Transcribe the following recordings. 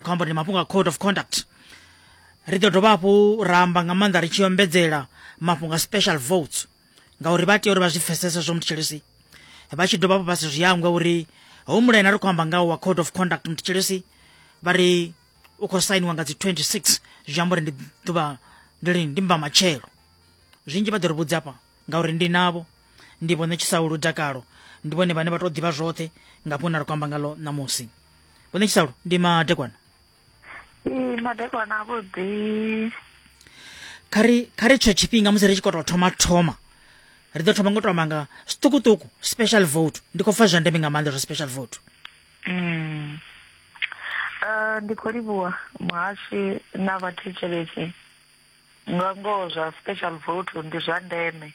khou amba ndi mafhungo a code of conduct ri ḓo dovha hafhu ra amba nga maanḓa ri tshi ombedzela mafhungo a special votes ngauri vha tea uri vha zwi pfesese zwo mutshilisi vha tshi dovha hafhu vha si zwi hangwe uri hoyu mulaena ri khou amba ngawo wa code of conduct mutshilisi vha ri u khou sainiwa nga dzi 26 zwi amba uri ndi ḓuvha ndi lini ndi mba matshelo zwinzhi vha ḓo ri vhudza hafha ngauri ndi navho ndi vhone tshisaulu dakalo ndi vhone vhane vha tou ḓivha zwoṱhe nga fhungo na ri kwamba ngalo ṋamusi vhone tshisaulu ndi madekwana ee madekwana avhuḓi kha ri kha ri tsho tshifhinga musi ri tshi khou tou thoma thoma ri ḓo thoma ngo tou manga zwiṱukuṱuku special vote ndi khou pfa zwa ndeme nga maanḓa zwa special vote mm. uh, ndi khou livhuwa muhashi na vhathetshelesi Nga ngoho zwa special vote ndi zwa ndeme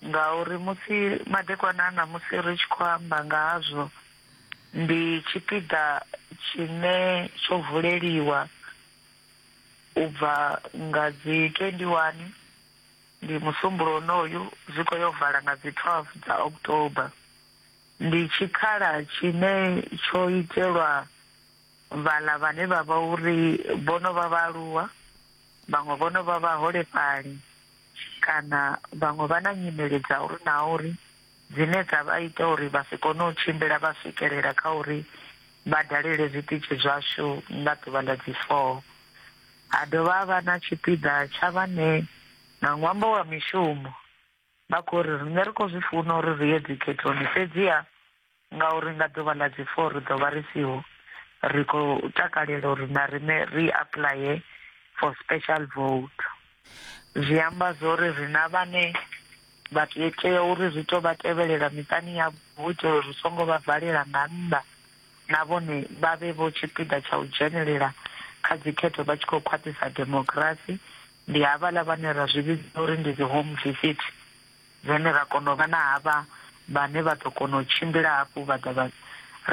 ngauri musi madekwana a ṋamusi ri tshi khou amba nga hazwo, ndi tshipiḓa tshine tsho vuleliwa u bva nga dzi 21 ndi musumbulowo wonoyu zwi khou yo vala nga dzi 12 dza October. Ndi tshikhala tshine tsho itelwa. Vhaḽa vhane vha vha uri vho no vha vhaaluwa, vhaṅwe vho no vha vhaholefhali kana vhaṅwe vha na nyimele dza uri na uri dzine dza vha ita uri vha si kone u tshimbila vha swikelela kha uri vha dalele zwiṱitshi zwashu nga ḓuvha ḽa dzi four. Ha dovha ha vha na tshipiḓa tsha vhane nga ṅwambo wa mishumo Vha khou ri, Riṋe ri khou zwi funa uri ri ye dzikhethoni, fhedziha ngauri nga ḓuvha ḽa dzi four ri ḓo vha ri siho, ri khou takalela uri na riṋe ri apuḽaye for special vote. Zwi amba zwori ri na vhane vha tea uri ri tou vha tevhelela miṱani yavho hu itela uri ri songo vha valela nga nnḓa na vhone vha vhe vho tshipiḓa tsha u dzhenelela kha dzikhetho vha tshi khou khwaṱhisa demokirasi ndi havhaḽa vhane ra zwi vhidza uri ndi dzi home visit dzine ra kona u vha na havha vhane vha ḓo kona u tshimbila hafhu vha ḓa vha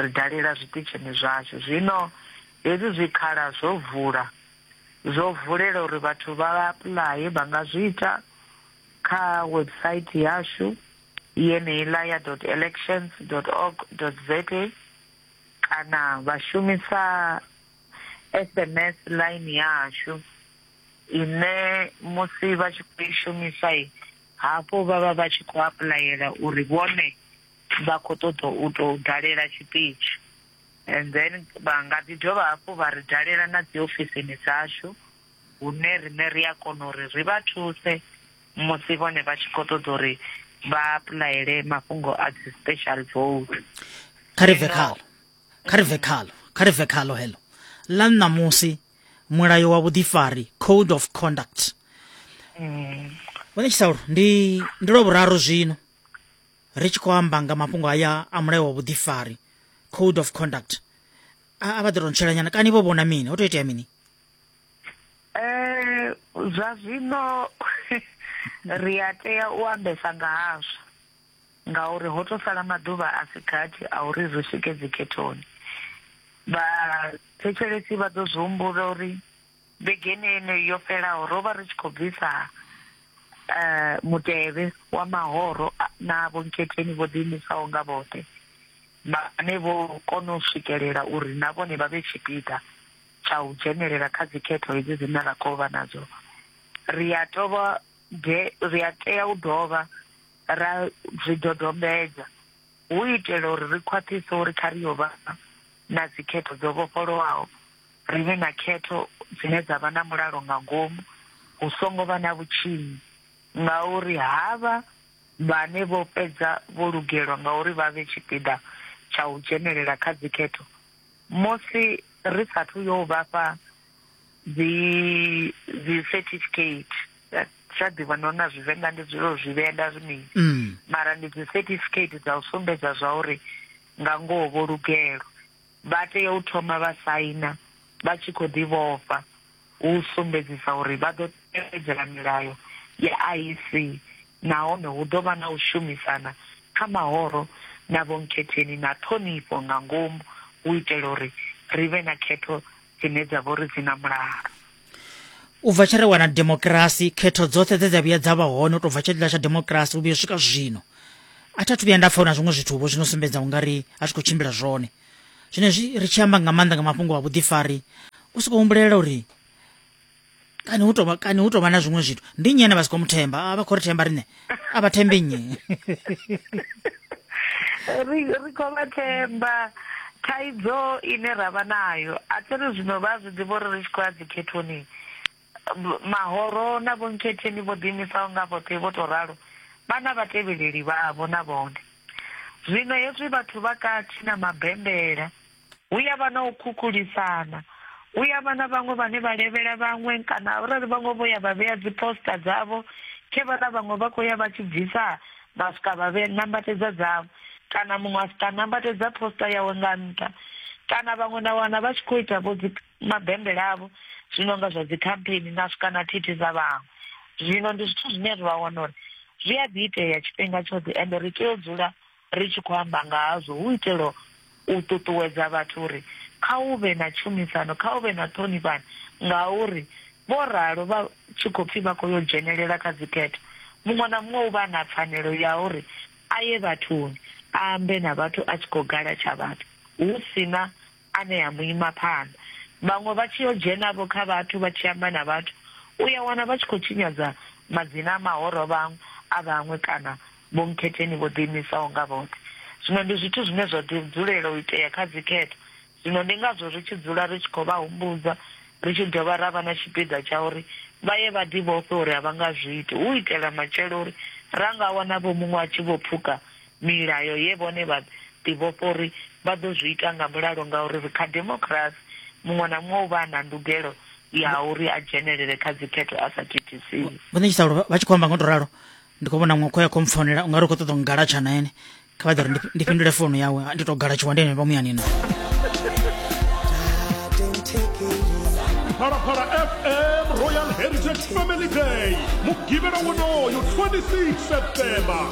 ri dalela zwiṱitshini zwashu zwino hezwi zwikhala zwo vula zwo vulela uri vhathu vha apuḽaye vha nga zwi ita kha website yashu yeneiḽa ya dot elections dot org dot za kana vha shumisa sms line ya hashu ine musi vha tshi khou i shumisa i hafho vha vha vha tshi khou apulayela uri vhone vha khou ṱoḓa u tou dalela tshiṱitshi and then vha nga ḓi dovha hafhu vha ri dalela na dzi ofisini dzashu hune riṋe ri a kona uri ri vha thuse musi vhone vha tshi khou ṱoḓa uri vha apulayele mafhungo a dzi special vote kha ri bve khalo kha ri bve khalo kha ri bve khalo heḽo ḽa ṋamusi mulayo wa vhuḓifari code of conduct mm. vhone tshisaulu ndi ndi lwa vhuraru zwino ri tshi khou amba nga mafhungo haya a mulayo wa vhuḓifari code of conduct a vha ḓi rontshelanyana kani vho vhona mini ho to itea mini eh zwa zwino ri a tea u ambesa nga hazwo ngauri ho tou sala maḓuvha a si gathi a uri ri swike dzikhethoni. Vhathetshelesi vha ḓo zwi humbula uri vhegeni yeneyi yo fhelaho ro vha ri tshi khou bvisa eh, mutevhe wa mahoro na vhonkhetheni vho ḓiimisaho nga vhoṱhe vhane vho kona u swikelela uri na vhone vha vhe tshipiḓa tsha u dzhenelela kha dzikhetho hedzi dzine ra khou vha nadzo ri a tovha ri a tea u dovha ra zwi dodombedza hu itela uri ri khwaṱhise uri kha ri yo vha na dzikhetho dzo vhofholowaho, ri vhe na khetho dzine dza vha na mulalo nga ngomu, hu songo vha na vhutshinyi, ngauri havha vhane vho fhedza vho lugelwa nga uri vha vhe tshipiḓa tsha u dzhenelela kha dzikhetho musi ri sathu yo vha fha dzi dzi certificate zwa ḓivha no na zwivenḓa ndi dzule zwi vhea nda zwi mini mm. mara ndi dzi certificate dza u sumbedza zwa uri nga ngoho vho lugelo vha tea u thoma vha saina vha tshi khou ḓi vhofha u sumbedzisa uri vha ḓo tevhedzela milayo ya IEC nahone hu ḓo vha na u shumisana kha mahoro na vhonkhetheni na ṱhonifho nga ngomu u itela uri ri vhe na khetho dzine dza vha uri dzi na mulalo u bva tshe re wana demokirasi khetho dzoṱhe dze dza vhuya dza vha hone u tou bva tshetla tsha demokirasi u vhuya swika zwino a thi athu vhuya nda pfa na zwiṅwe zwithu vho zwino sumbedza ungari a zwi khou tshimbila zwone zwino zwi ri tshi amba nga maanḓa nga mafhungo a vhuḓifari u soko humbulela uri kani hu tovha kani hu tovha na zwiṅwe zwithu ndi nnyi ane vha si khou muthemba a vha khou ri themba riṋe a vha thembe nnyi ri ri khou vha themba thaidzo ine ra vha nayo a thi ri zwino vha zwi ḓivha uri ri tshi khou ya dzikhethoni mahoro na vhonkhetheni vho ḓiimisaho nga vhoṱhe vho tou ralo vha na vhatevheleli vhavho na vhone zwino hezwi vhathu vha katshi na mabembela hu ya vha na u khukhulisana hu ya vha na vhaṅwe vhane vha levhela vhaṅwe kana arali vhaṅwe vho ya vha vhea dziposta dzavho khe vha na vhaṅwe vha khou ya vha tshi bvisa vha swika vha vhe nambatedza dzavho kana muṅwe a swika nambatedza posta yawe nga nṱha kana vhaṅwe na wana vha tshi khou ita vho dzi mabembele avho zwi no nga zwa dzi campaign na swika na thithi dza vhaṅwe zwino ndi zwithu zwine ri vha wana uri zwi a ḓi itea tshifhinga tshoṱhe ende ri tea u dzula Ri tshi khou amba nga hazwo hu u itela u ṱuṱuwedza vhathu uri kha hu vhe na tshumisano, kha hu vhe na ṱhonifhano ngauri vho ralo vha tshi khou pfi vha khou yo dzhenelela kha dzikhetho, muṅwe na muṅwe u vha a na pfanelo ya uri a ye vhathuni a ambe na vhathu a tshi khou gala tsha vhathu hu si na anea mu ima phanḓa, vhaṅwe vha tshi yo dzhena-vho kha vhathu vha tshi amba na vhathu, u ya wana vha tshi khou tshinyadza madzina a mahoro vhaṅwe a vhaṅwe kana vhomkhetheni vho ḓiimisaho nga vhoṱhe. Zwino ndi zwithu zwine zwa ḓi dzulela u itea kha dzikhetho, zwino ndi ngazwo ri tshi dzula ri tshi khou vha humbudza, ri tshi dovha ra vha na tshipiḓa tsha uri vha ye vha ḓivhofhe uri a vha nga zwi iti, hu u itela matshelo uri ra nga wana-vho muṅwe a tshi vho pfuka milayo ye vhone vha ḓivhofha uri vha ḓo zwi ita nga mulalo ngauri ri kha demokirasi, muṅwe na muṅwe u vha a na ndugelo ya uri a dzhenelele kha dzikhetho a sa thithisiwi. Vho Ṋetshisalo vha tshi khou amba nga u tou ralo, ndi khou vhona muṅwe khoya khou mpfonela u nga ri u khou ṱoḓa u ngalatsha na ene kha vha ḓo ri ndi fhindule founu yawe ndi tou galatshiwa ndi henevha muyani na Phalaphala FM Royal Heritage Family Day mugivhela wonoyo 26 September